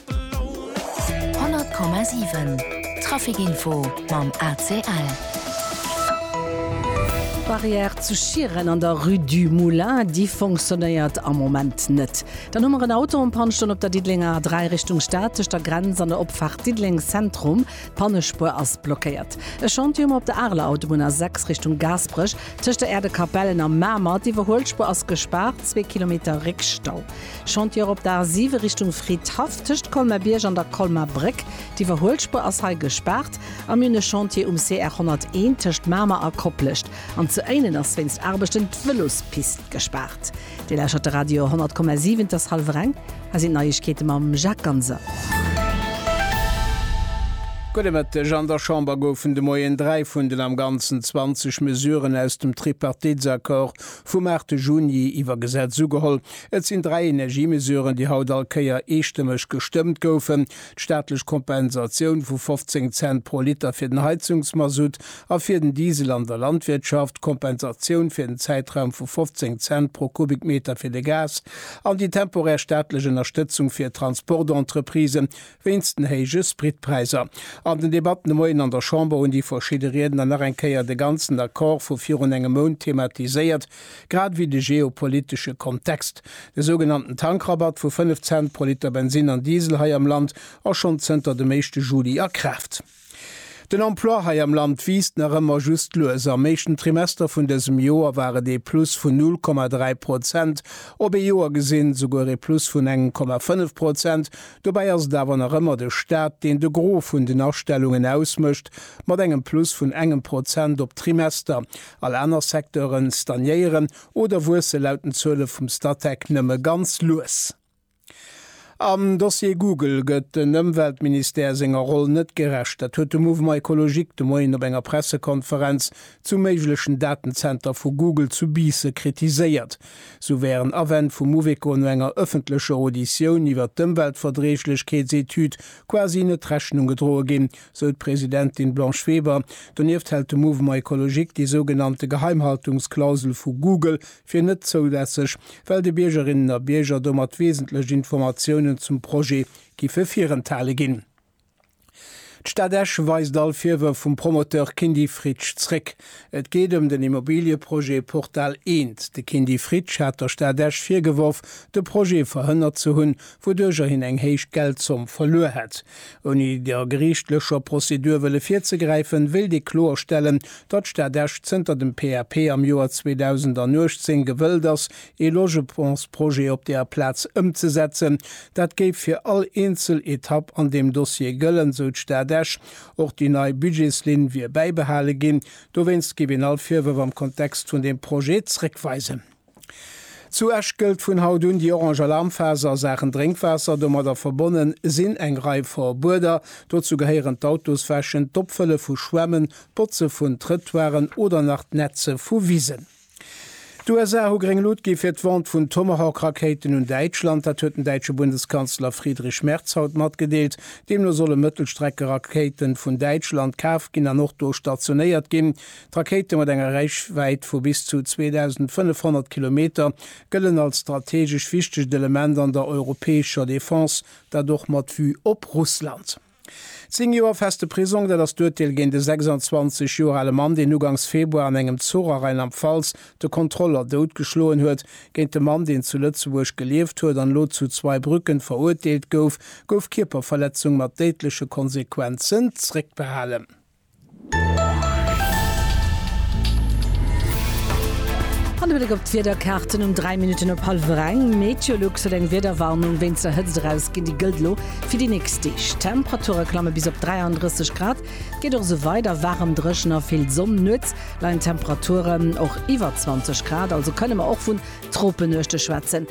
100,7 Trafic Info mam ACL. D'Barrière zu Schieren an der Rue du Moulin, déi fonctionnéiert am Moment net. Dann hu mer en Auto en panne stoen op der Diddelenger A3 Richtung Stad, tëscht der Grenz an der Opfaart Diddeleng Zentrum. D'Pannespuer ass blockéiert. E Chantier hu mer op der Areler Autobunn A6 Richtung Gaasperech, tëscht der Äerdekapellen a Mamer. D'Iwwerhuelspuer ass gespaart, zwee Kilometer Réckstau. Chantiere op der A 7 Richtung Fridhaff, tëscht Colmer-Bierg an der Colmer Bréck. D'Iwwerhuelspur ass hei gespaart a mir hunn e Chantier um CR 101 tëscht Mamer a Koplescht. An zu Éinen ass wéinst Aarbechten d'Vëlospist gespaart. Dir lauschert de Radio 100,7. Et ass hallwer eng. Hei sinn d'Neiegkeete mam Jacques Ganser. Gudde Mëtteg. An der Chamber goufen de Moien dräi vun den am Ganzen 20 Mesuren aus dem Tripartitsaccord vum 8 Juni iwwer Gesetz ugeholl. Et sinn dräi Energiemesuren, déi haut all Kéier eestëmmeg gestëmmt goufen, d'staatlech Kompensatioun vu 15 Cent pro Liter fir den Heizungsmasutt a fir den Diesel an der Landwirtschaft, d'Kompensatioun fir den Zäitraum vu 15 Cent pro Kubikmeter fir de Gas an déi temporär staatlech Ënnerstëtzung fir Transportentreprisen wéinst den héije Spritpräiser. An den Debatten de Moien an der Chamber hunn déi verschidde Riedner nach eng Kéier de ganzen Accord vu virun engem Mount thematiséiert, grad ewéi de geopolitesche Kontext. De sougenannten Tankrabatt vu 5 Cent pro Liter Bensin an Diesel hei am Land ass schonn zënter dem éischte Juli a Kraaft. Den Emploi hei am Land wiisst nach ëmmer just lues. Am éischten Trimester vun dësem Joer war et ee Plus vun 0,3 Prozent, op ee Joer gesinn souguer ee Plus vun engem Komma 5 Prozent. Dobäi ass et awer nach ëmmer de Staat, deen de Gros vun den Astellungen ausmécht, mat engem Plus vun engem Prozent op d'Trimester. All aner Secteuren stagnéieren oder wuesse laut den Zuele vum Statec nëmme ganz lues. Am Dossier Google gëtt den Ëmweltministère senger Roll net gerecht. Dat huet de Mouvement Ecologique de Moien op enger Pressekonferenz zum méiglechen Datenzenter vu Google zu Biisse kritiséiert. Sou wären Awänn vum Mouveco no enger ëffentlecher Auditioun iwwer d'Ëmweltverträeglechkeetsetüd quasi net Rechnung gedroe ginn, sou d'Presidentin Blanche Weber. Donieft hält de Mouvement Ecologique déi sougenannte Geheimhaltungsklausel vu Google fir net zoulässeg, well de Biergerinnen a Bierger domat wesentlech Informatiounen zum Projet giffe virenthale ginn. D'Stad Esch weist all Virwërf vum Promoteur Kindy Fritsch zréck. Et geet ëm den Immobilieprojet Portal Eent. De Kindy Fritsch hat der Stad Esch virgeworf, de Projet verhënnert ze hunn, wouduercher hien eng héich Geldzomm verluer hätt. Ouni der geriichtlecher Prozedur wëlle virzegräifen, wéilt ee kloerstellen, datt d'Stad Esch zënter dem PAP am Joer 2018 gewëllt ass, ee Logementsprojet op där Plaz ëmzesetzen. Dat géif fir all eenzel Etapp an deem Dossier gëllen, sou d'Stad Esch. Och déi nei Budgetslinn wier bäibehale ginn. Dowéinst géif een all Virwërf am Kontext vun deem Projet zréckweisen. Zu Esch gëllt vun haut un déi orange Alarmphase a Saachen Drénkwaasser. Domadder verbonne sinn eng Rei Verbueder. Dozou gehéieren d'Autos wäschen, d'Opfëlle vu Schwämmen, d'Botze vun Trëttoiren oder nach d'Netze vu Wisen. D'USA hu gréng Lut gi fir d'Vente vun Tomahawk-Rakéiten un Däitschland. Dat huet den däitsche Bundeskanzler Friedrich Merz haut matgedeelt. Deemno solle Mëttelstreckerakéite vun Däitschland kaf ginn an och do stationéiert ginn. D'Rakéite mat enger Räichwäit vu bis zu 2.500 Kilometer gëllen als strategesch wichtegt Element an der europäescher Defense, dat och mat Vue op Russland. Zéng Joer feste Prisong, dat ass d'Urteel géint e 26 Joer ale Mann, deen ugangs Februar an engem Zuch a Rheinland-Pfalz de Kontroller doutgeschloen huet. Géint de Mann, deen zu Lëtzebuerg gelieft huet an elo zu Zweibrücken verurteelt gouf, gouf Kierperverletzung mat déidleche Konsequenzen zréckbehalen. An e Bléck op d'Wiederkaarten um 3 Minutten op hallwer eng. Meteolux huet eng Wiederwarnung wéinst der Hëtzt erausginn. Déi gëllt elo fir déi nächst Deeg. D'Temperature klamme bis op 33 Grad. Et geet och esou weider, waarem, dréchen a vill Sonn. Nuets leien d'Temperaturen och iwwer 20 Grad, also kënne mer och vun Tropenuechte schwätzen.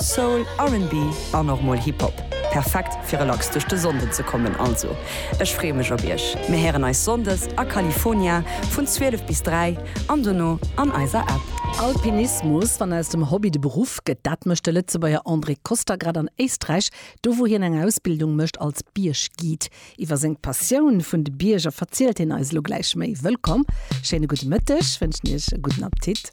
Soul, RnB an och mol Hip Hop. Perfekt fir relax duerch de Sonnden ze kommen. Also ech freeë mech op iech. Mir héieren eis Sonndes a California vun 12 bis 3 an dono an eiser App. Alpinismus, wann aus dem Hobby de Beruff gëtt, dat mécht de Lëtzebuerger André Koster grad an Éisträich, do wou hien eng Ausbildung mécht als Bierg-Guide. Iwwer seng Passioun vun de Bierger verzielt hien eis elo gläich méi. Wëllkomm, schéine gudde Mëtteg, wënschen iech e gudden Appetit.